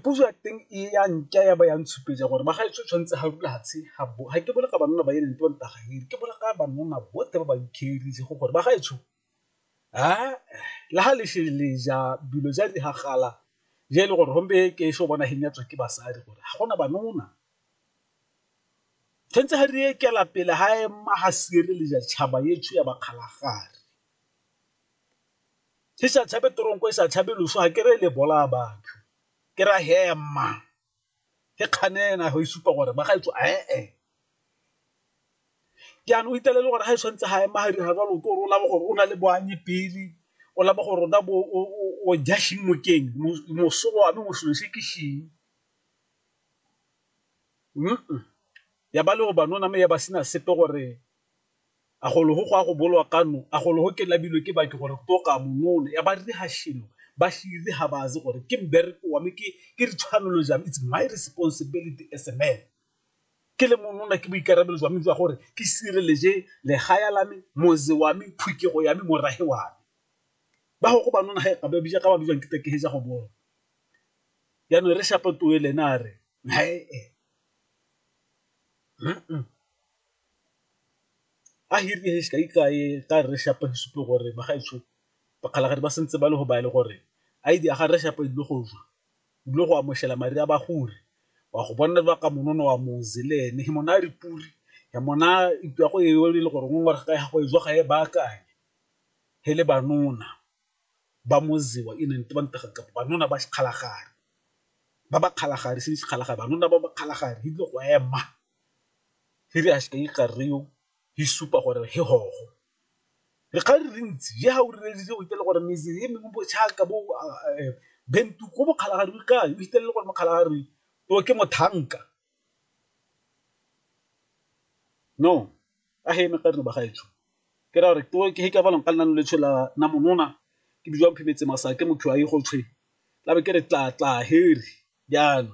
Puso ya teng e a nka ya ba ya ntshupetletsang gore ba ga e tshwanetse ga rula fatshe ga ke bone ka banna ba e leng tona ga ere ke bolela ka banna botlhe ba ba iketlile go gore ba ga etsho le ga le le ja dilo ja di gagala ja e le gore gompe ke e seng bona fenya tswa ke basadi gore ga gona ba nona tshwanetse ga re e kela pele ga ema ga sireletsa tšhaba etsho ya ba kgalagadi. Ke sa tshabe toronko e sa tshabe loso ga ke re le bolaya batho ke ra hema ke kganena go isupa gore ba gaetso ee ke ano itele le gore ga e tshwanetse ga ema ga dira jalo ke gore o laba gore o na le boanye pele o laba gore rona bo o ja sheng mokeng moso wa me mosolo se ke sheng ya ba le go banona me ya ba sena sepe gore A golo go go a go bolwa kano, a golo go ke labilwe ke baki gore to ka mo none, ya ba ri ha shilo, ba shiri ha ba ze gore ke mbereko wa me, ke, ke ri tshwanelo jwa me, it's my responsibility as a man. Ke le mo nona, ke boikarabelo jwa me jwa gore ke sireleje legaya la me, moze wa me, phukego ya me, morahe wa me. Ba go go ba nona ha e ka ba bija ka ba bijwang ke ta ke he ja go bona. Ya no re shapa toele na re, Nae e. Hm-m. a hirile he sekai ka e ka re shapa he supe gore ba gaetsho ba kgalagadi ba sentse ba le go ba le gore a idi aga re shapa dilo go jwa dilo go amoshela mari a ba gore wa go bona ba ka monono wa moze le ene he mona re puri he mona itwa go e e le gore ngwe ga go jwa ga e ba kae he le banona ba mozewa e neng ba ntega ka banona ba kgalagadi ba ba kgalagadi se kgalagadi banona ba ba kgalagadi dilo go ema. he re a seka ikga reo he supa gore he hogo. Re kgale re ntsi je ha o rerelise o itele gore mese he mengwe bo chaka bo bentu ko mokgala ga rui kae, o itelele gore mokgala ga rui o ke mothanka. No a he mekgare no ba gaetsho ke ra gore to ke he ke a balong ka lenaneo le tshwela na monona ke bidiwa mphemetse masake motho a ye go tshwe tlabe ke re tla tla he re jaana.